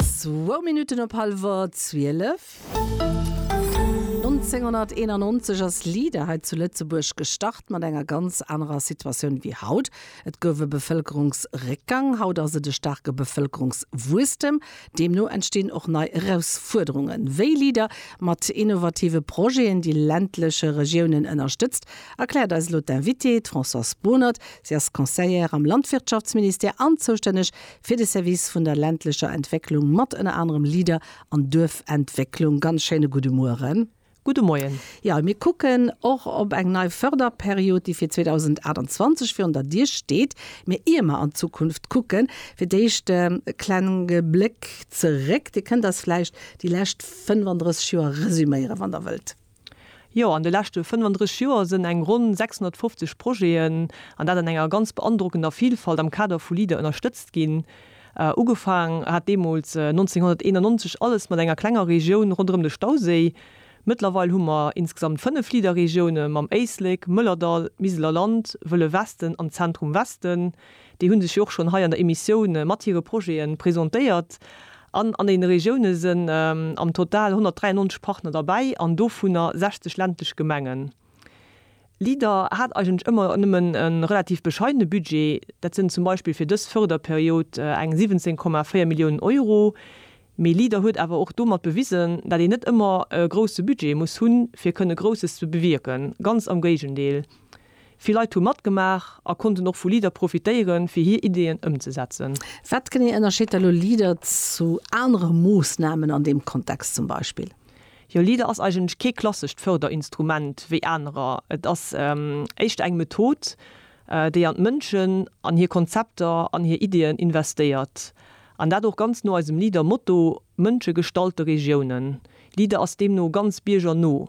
Zwou Minutten op hallwer zwielef. 1991 ass LEADER hei zu Lëtzebuerg gestart, mat enger ganz anerer Situatioun wéi haut. Et gouf e Bevëlkerungsréckgang, haut ass et e staarke Bevëlkerungswuesstem. Deemno entstinn och nei Erausfuerderungen. Wéi LEADER mat innovative Projeten déi ländleche Regiounen ënnerstëtzt, erkläert eis elo d'Invitée, d'Françoise Bohnert. Si ass Conseillère am Landwirtschaftsministère an zoustänneg fir de Service vun der ländlecher Entwécklung mat ënner anerem LEADER an Duerfentwécklung. Ganz schéine gudde Mueren. Gudde Moien. Jo, mir kucken och op eng nei Förderperiod, déi fir 2028 virun der Dier steet. Mee ier mer an d'Zukunft kucken, fir d'éischt e klenge Bléck zeréck. Dir kënnt eis vläicht déi lescht 35 Joer resuméieren, wann Der wëllt. Jo, an de leschte 35 Joer sënn eng ronn 650 Projeten, an dat an enger ganz beandrockender Vilfalt, am Kader vu Leader ënnerstëtzt ginn. Ugefaang hat deemools, 1991, alles mat enger klenger Regioun ronderëm de Stauséi. Mëttlerweil hu mer insgesamt fënnef Leader-Regioune mam Éislek, Mëllerdall, Miseler Land, Wëlle Westen an Zentrum-Westen. Déi hu sech jo och schonn hei an der Emissioun mat hire Projete presentéiert. An an deene Regioune sinn am Total 193 Partner derbäi an dovunner 60 ländlech Gemengen. LEADER hat eigentlech ëmmer nëmmen e relativ bescheidene Budget. Dat sinn zum Beispill fir dës Fërderperiod eng 17,4 Milliounen Euro. Mee LEADER huet awer och domat bewisen, dat een net ëmmer e grousse Budget muss hunn, fir kënne Grousses ze bewierken. Ganz am Géigendeel. Vill Leit hu matgemaach a konnten och vu LEADER profitéieren, fir hir Ideeën ëmzesetzen. Wat genee ënnerscheet da lo LEADER zu anere Moossnamen an deem Kontext zum Beispill? Jo, LEADER ass eigentlech kee klassescht Fërderinstrument wéi anerer. Et ass éischter eng Method, déi an d'Mënschen, an hir Konzepter, an hir Ideeën investéiert. An dat och ganz no eisem LEADER-Motto, Mënsche gestalte Regiounen. LEADER ass deemno ganz biergerno.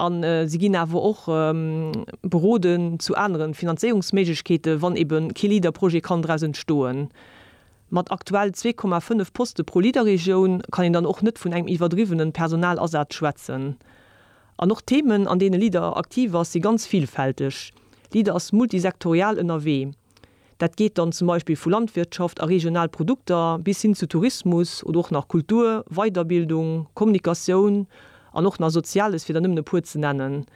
A si ginn awer och beroden zu anere Finanzéierungsméiglechkeete wann ebe kee LEADER-Projet kann draus entstoen. Mat aktuell zwee Komma fënnef Poste pro LEADER-Regioun kann een dann och net vun engem iwwerdriwwene Personalasaz schwätzen. An och d'Themen, an deene LEADER aktiv ass, si ganz villfälteg. LEADER ass multisektorial ënnerwee. Dat geet dann zum Beispill vu Landwirtschaft a regional Produkter bis hin zu Tourismus oder och nach Kultur, Weiderbildung, Kommunikatioun an och nach Soziales, fir der nëmmen e puer ze nennen.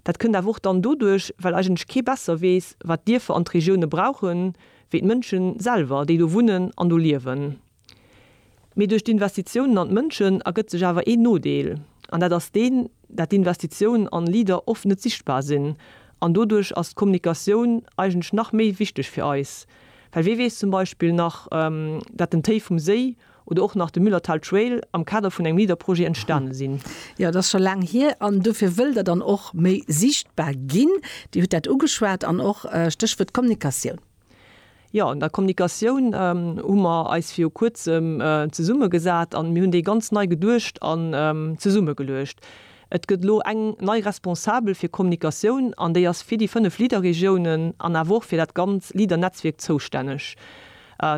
Dat kënnt awer och dann doduerch, well eigentlech kee besser weess, wat d'Dierfer an d'Regioune brauchen, wéi d'Mënschen selwer, déi do wunnen an do liewen. Mee duerch d'Investitiounen an d'Mënschen ergëtt sech awer een Nodeel, an dat ass deen, dat d'Investitioun an Leader oft net sichtbar sinn. An doduerch ass d'Kommunikatioun eigentlech nach méi wichteg fir eis, well wee weess zum Beispill nach, dat den Téi vum Séi oder och nach de Müllertal Trail am Kader vun engem Leader-Projet entstane sinn. Jo, et ass scho laang hier, an dofir wëll Der dann och méi sichtbar ginn. Dir hutt dat ugeschwat, an och Stéchwuert Kommunikatioun. Jo, an der Kommunikatioun hu mer eis viru Kuerzem zesummegesat an mir hunn déi ganz nei geduecht an zesummegeluecht. Et gëtt elo eng nei Responsabel fir Kommunikatioun an déi ass fir déi fënnef LEADER-Regiounen an awer och fir dat ganz LEADER-Netzwierk zoustänneg.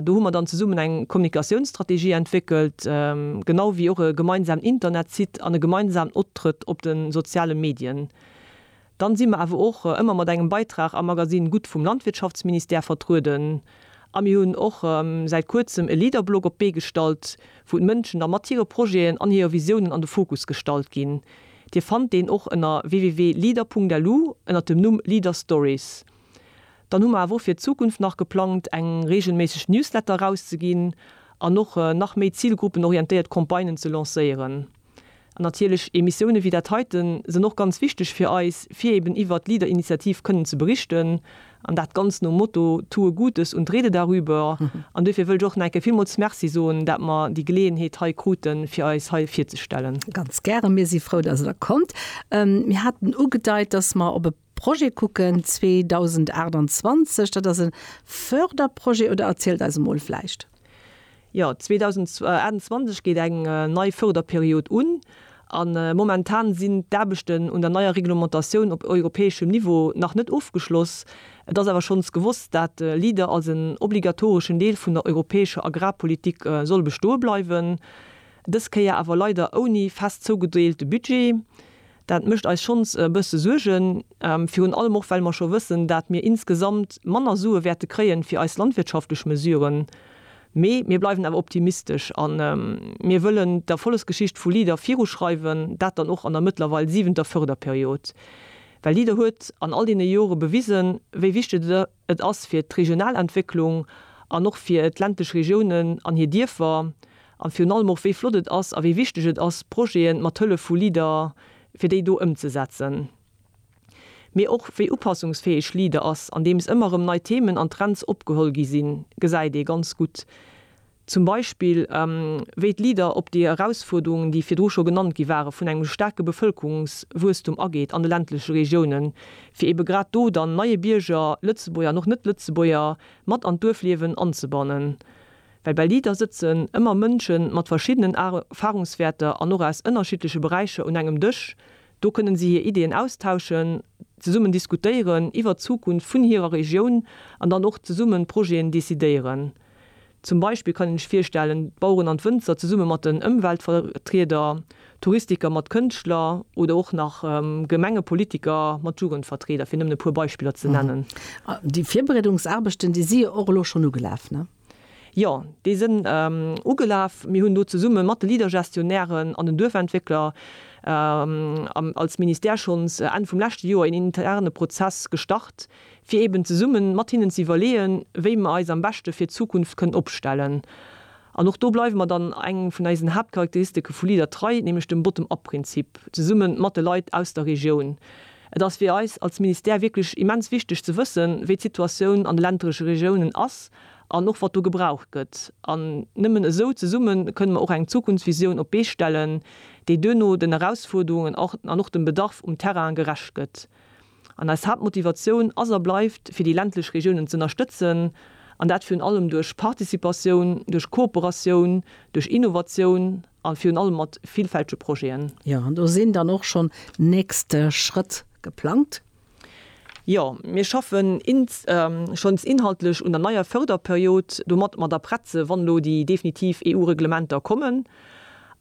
Do hu mer dann zesummen eng Kommunikatiounsstrategie entwéckelt, genau wéi och e gemeinsamen Internetsite an e gemeinsamen Optrëtt op de soziale Medien. Dann si mer awer och ëmmer mat engem Beitrag am Magasinn Gutt vum Landwirtschaftsministère vertrueden. A mir hunn och säit kuerzem e Leaderblog op d'Bee gestallt, wou d'Mënschen da mat hire Projeten an hire Visiounen an de Fokus gestallt ginn. Dir fannt deen och ënner www.leader.lu ënner dem Numm Leader Stories. Dann hu mer awer och fir d'Zukunft nach geplangt, eng reegelméisseg Newsletter erauszeginn an och nach méi zilgruppenorientéiert Campagnen ze lancéieren. An natierlech Emissioune wéi dat heiten sënn och ganz wichteg fir eis, fir eben iwwert d'Leader-Initiativ kënnen ze berichten, an dat ganz nom Motto Tue Gutes und rede darüber. An duerfir wëll ech och nach eng Kéier villmools Merci soen, dat mer déi Geleeënheet hei kruten, fir eis hei virzestellen. Ganz gären. Mir si frou, dass Der kommt. Mir haten ugedeit, dass mer op e. Projet kucken 2028, dat ass e Förderprojet, oder erzielt eis emol vläicht. Jo, 2028 geet eng nei Förderperiod un a momentan sinn d'Aarbechten un der neier Reglementatioun op europäeschem Niveau nach net ofgeschloss. Et ass awer schonns gewosst, dat Leader als en obligatoreschen Deel vun der europäescher Agrarpolitik soll bestoe bleiwen, dës Kéier awer leider ouni fest zougedeelte Budget. Dat mécht eis schonns e bësse Suergen, virun allem och well mer scho wëssen, dat mir insgesamt manner Sue wäerte kréien fir eis landwirtschaftlech Mesuren. Mee mir bleiwen awer optimistesch a mir wëllen d'Erfollegsgeschicht vu Leader viruschreiwen, dat dann och an der mëttlerweil siwenter Förderperiod. Well Leader huet an all deene Jore bewisen, wéi wichteg et. Et ass fir d'regional Entwécklung an och fir d'ländlech Regiounen an hir Dierfer, a virun allem och, wéi flott et ass a wéi wichteg et ass, Projete mat Hëllef vu Leader, fir déi do ëmzesetzen, mee och wéi upassungsfäeg Leader ass, andeems ëmmer erëm nei Themen an Trends opgeholl gi sinn, gesäit ee ganz gutt, Zum Beispill, wéi d'LEADER op déi Erausfuerderungen, déi virdru scho genannt gi waren, vun engem staarke Bevëlkerungswuesstum ageet an de ländleche Regiounen, fir eebe grad do dann neie Bierger, Lëtzebuerger an och Net-Lëtzebuerger, mat an d'Duerfliewen anzebannen. Well bei LEADER sëtzen ëmmer Mënsche mat verschiddenen Erfahrungswäerter an och aus ënnerschiddleche Beräicher un engem Dësch. Do kënnen si hir Ideeën austauschen, zesummen diskutéieren iwwert d'Zukunft vun hirer Regioun an dann och zesummen Projeten decidéieren. Zum Beispill kann een ech virstellen, d'Baueren an d'Wënzer zesumme mat den Ëmweltvertrieder, Touristiker mat Kënschtler oder och nach Gemengepolitiker mat Jugendvertrieder, fir nëmmen e puer Beispiller ze nennen. Déi Virbereedungsaarbechten, déi si jo och elo schonn ugelaf, ne? Jo, déi sinn ugelaf. Mir hunn do zesumme mat de Leader-Gestionnairen an den Duerfentwéckler als Ministère schonns Enn vum leschte Joer een interne Prozess gestart, fir eben zesummen mat hinnen ze iwwerleeën, wéi mer eis am beschte fir d'Zukunft kënnen opstellen. An och do bleiwe mer dann engem vun eisen Haaptcharakteristike vu LEADER trei, nämlech dem Bottom-up-Prinzip, zesumme mat de Leit aus der Regioun. Et ass fir eis als Ministère wierklech immens wichteg ze wëssen, wéi d'Situatioun an de ländleche Regiounen ass an och wat do gebraucht gëtt. An nëmmen esou zesumme kënnen mer och eng Zukunftsvisioun op d'Bee stellen, déi duerno den Erausfuerderungen an och dem Bedarf um Terrain gerecht gëtt. An eis Haaptmotivatioun ass a bleift, fir déi ländlech Regiounen z'ënnerstëtzen, an dat virun allem duerch Participatioun, duerch Kooperatioun, duerch Innovatioun a virun allem mat villfältege Projeten. Jo, an do sinn dann och schonn nächst Schrëtt geplangt? Jo, mir schaffen schonns inhaltlech un der neier Förderperiod, domat mer da prett sinn, wann elo déi definitiv EU-Reglementer kommen.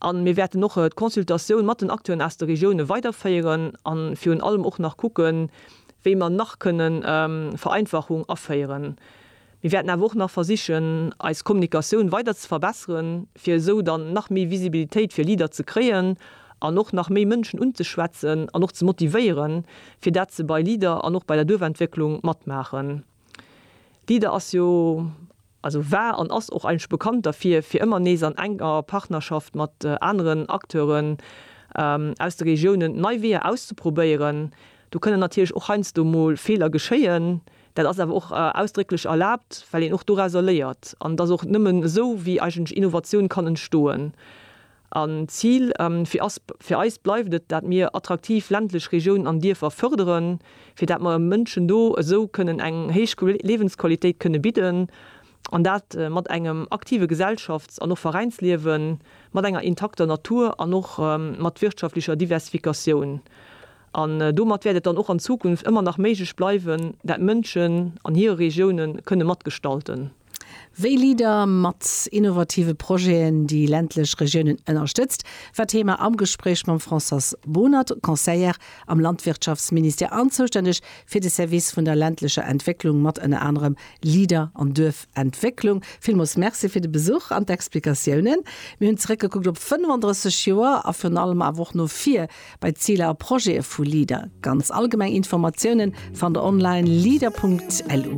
A mir wäerten och d'Consultatioun mat den Acteuren aus de Regioune weiderféieren a virun allem och nach kucken, wéi mer nach kënne Vereinfachung aféieren. Mir wäerten awer och nach versichen, eis Kommunikatioun weider ze verbesseren, fir esou dann nach méi Visibilitéit fir LEADER ze kréien an och nach méi Mënschen unzeschwätzen an och ze motivéieren, fir dat se bei LEADER an och bei der Duerfentwécklung matmaachen. D'Ida ass jo, also war an ass och eigentlech bekannt derfir, fir ëmmer nees an enger Partnerschaft mat aneren Acteuren aus de Regiounen nei Weeër auszeprobéieren. Do kënnen natierlech och heiansdo mol Feeler geschéien. Dat ass awer och ausdrécklech erlaabt, well een och dorauser léiert. An et ass och nëmmen esou, wéi eigentlech Innovatioun kann entstoen. An d'Zil fir eis bleift et, dat mir attraktiv ländlech Regiounen an Dierfer fërderen, fir dat mer Mënschen do esou kënnen eng héich Liewensqualitéit kënnen bidden, an dat mat engem aktive Gesellschafts an och Veräinsliewen, mat enger intakter Natur an och mat wirtschaftlecher Diversifikatioun. An domat wäert et dann och an Zukunft ëmmer nach méiglech bleiwen, dat Mënschen an hire Regiounen kënnen matgestalten. Wéi LEADER mat innovative Projeten déi ländlech Regiounen ënnerstëtzt, war Thema am Gespréich mam Françoise Bohnert, Conseillère am Landwirtschaftsministère an zoustänneg fir de Service vun der ländlecher Entwécklung mat ënner anerem LEADER an Duerfentwécklung. Villmools Merci fir de Besuch an d'Explikatiounen. Mir hunn zeréckgekuckt op 35 Joer a virun allem awer och no vir bei d'Ziler a Projete vu LEADER. Ganz allgemeng Informatiounen fannt der online, leader.lu.